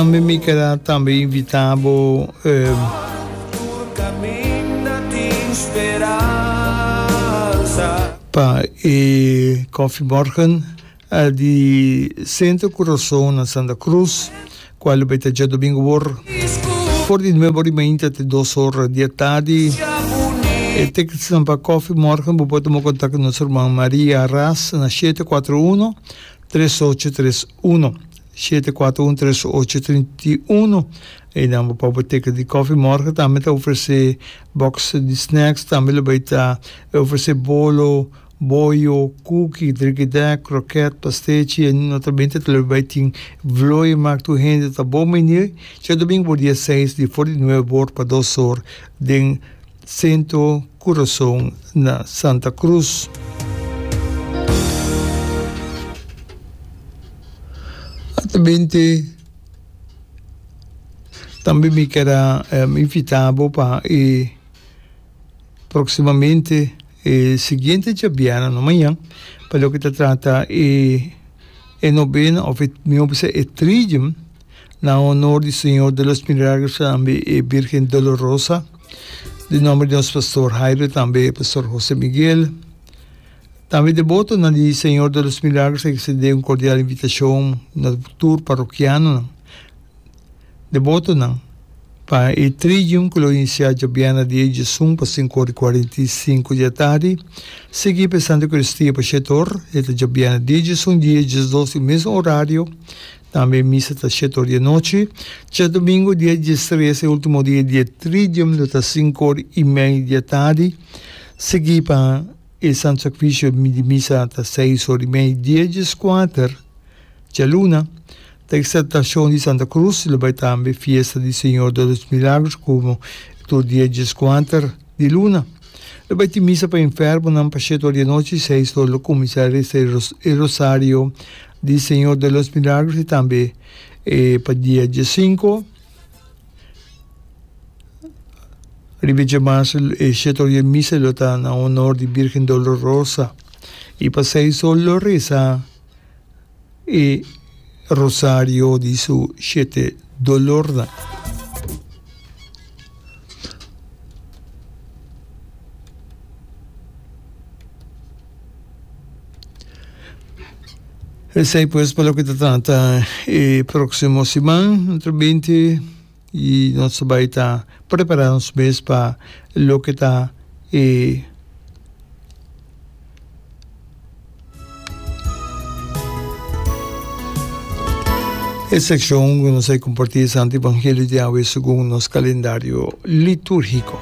Tambe mi keda tambe invita bo pa e Koffiemorgen di Centro Curaçao na Santa Cruz cual bai ta dje domingo wor for di nuebe ora y mainta te dos ora di e tardi. E tickets nan pa Koffiemorgen bo por tuma contacto nos herman Maria Ras na shete cuatro uno tres ocho tres uno. Shete kuater un tres ocho trinta i uno Einan bo pa Boteka di Kòfi Mòrke tambe ta ofresé bòks di snacks tambe lo bai ta e ofresé bolo, boyo, kuki, drikidèk, krokèt, pastechi e notabente ta lo bai tin vlooie mak tur hende ta bon meinir Chèdomingo por dia seis di for di nueve bor pa dos or den Sento Kurason na Santa Krus. Altamente tambe mi keda invita bo pa e proximamente e siguiente djabiana no mañan pa loke ta trata e e novena of e mi hopi sa e tridium Na honor di Señor de los Milagros tambe e Birgen Dolorosa, den nomber di nos Pastor Jairo tambe Pastor Jose Miguel. Tambe debotonan di Señor de los Milagros a extende un cordial invitacion na tur parrokianonan, debotonan, pa e Tridium cu lo inicia djabièrnè di e djesun pa sinku ora i cuarenta i sinku di atardi, sigui pa e Santa Eucaristia pa Shetor, e ta djabièrnè di e djesun di e djesdos di e mesun orario, Tambe misa ta siete or di e nochi. Chas domingo dia diestres, e ultimo dia di e tridium, lo ta sinku or i mei di e tardi. Sigui pa e Santu Sakrifisio di misa ta seis or i mei. Dia dieskuater, djaluna, ta Eksaltashon di Santa Krus, lo bai tambe Fiesta di Señor de los Milagros komo e tur dia dieskuater di luna. Lo bai tin misa pa enfermonan pa siete or di e nochi, seis or lo kuminsá resa e rosario Di Señor de los Milagros y tambe e pa dia diesinco riba dje marzo e shete ora e misa lo ta na honor di Birgen Dolorosa y pa seis ora lo reza e rosario di su shete dolornan. Esey pues pa loke ta trata e proximo siman nutu binti y nos ta bay ta prepara nos mes pa loke ta e e seccion cu nos a comparti e Santo Evangelio di Yahweh segun nos calendario liturgico.